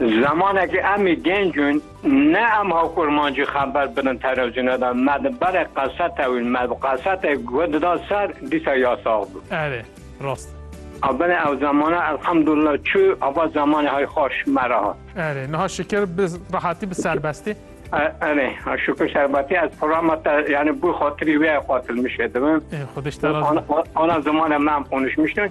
Zemanekî em ê gênc in, ne em hakurmancî xeber bidin telewîzyona de, me di berê qesete wîn, me bi qesete guh dida ser, dîsa ya sax bû. Erê, rast e. A binê ew zemana elhamdulillah çû, ava zemanê hay xweş me re hat. Erê, niha şikir bi rehatî, bi serbestî. Erê, şikir serbetî, ez programa te yanî bû xatirî wê qatil mişê dibim. Ê xwedîş te razî be. Ana zimane me em qonişmiştin,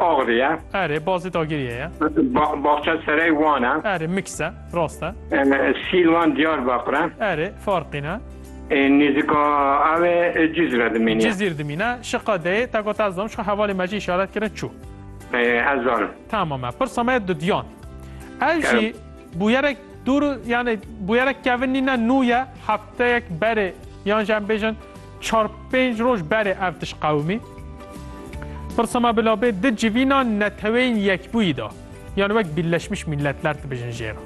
Agri ye. Erê, Bazê Dagiriyê ye. Baxçeserey Wan e. Erê, mix e, rast e. Sîlvan Diyarbakir e. Erê, farqîn e. Nêzîka ew ê Cizre dimîne. Cizîr dimîne. Şiqa deyê te got ez zom, şiqa hevalê me jî îşaret kirin çû. Ez zanim. Tamam e. Pirsa me ye dudiyan. Ev jî bûyerek dûr û yanê bûyerek kevin nîne nû ye. Hefteyek berê yan jî em bêjin Çar pênc roj berê ev tişt qewimî. Pirsa me bila bê di civîna neteweyên yekbûyî de yan wek Birleşmiş Milletler dibêjin jê re.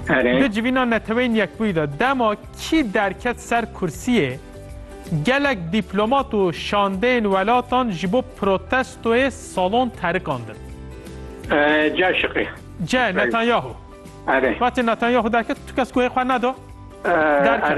Erê. Di civîna neteweyên yekbûyî de dema kî derket ser kursiyê gelek dîplomat û şandeyên welatan ji bo protestoyê salon terikandin. Ceh şiqî. Ceh Netanyahu. Erê. Wextê Netanyahu derket tu kes guhê xwe neda? Derket.